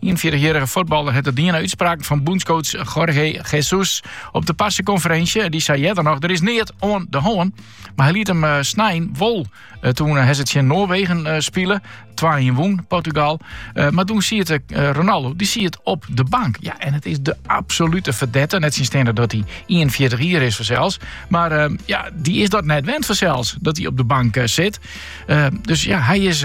41-jierrige fuotballer hat it dien nei útspraken fan bûnscoach Jorge Jesus. Op de parsekonferinsje dy sei earder noch, der is neat oan de hân. Mar hy liet him eh, snein wol. Eh, toen eh, hy tsjin Noarwegen spile, 2-1 wûn Portugal. mar toen siet Ronaldo, dy siet op de bank. Ja, en it is de absolute fedette. Nettsjinsteande dat hy 41 jier is fansels. Mar ja, dy is dat net wend fansels, dat hy op de bank sit. dus ja, hy is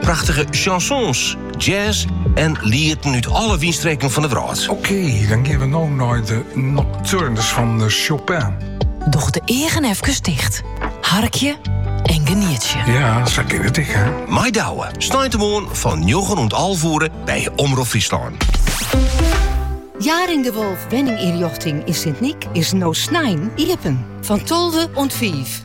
Prachtige chansons, jazz en lieten út alle wynstreken fan de wrâld. Oké, dan geane we no nei de Nocturnes fan Chopin. Doch de eagen efkes ticht. Harkje en genietje. Ja, sa kin it ek, hè. Mei Douwe, sneintemoarn fan njoggen oant alve oere by Omrop Fryslân. Jaring de Wolff Wenningynrjochting yn Sint Nyk is no snein iepen. Fan 12 oant 5.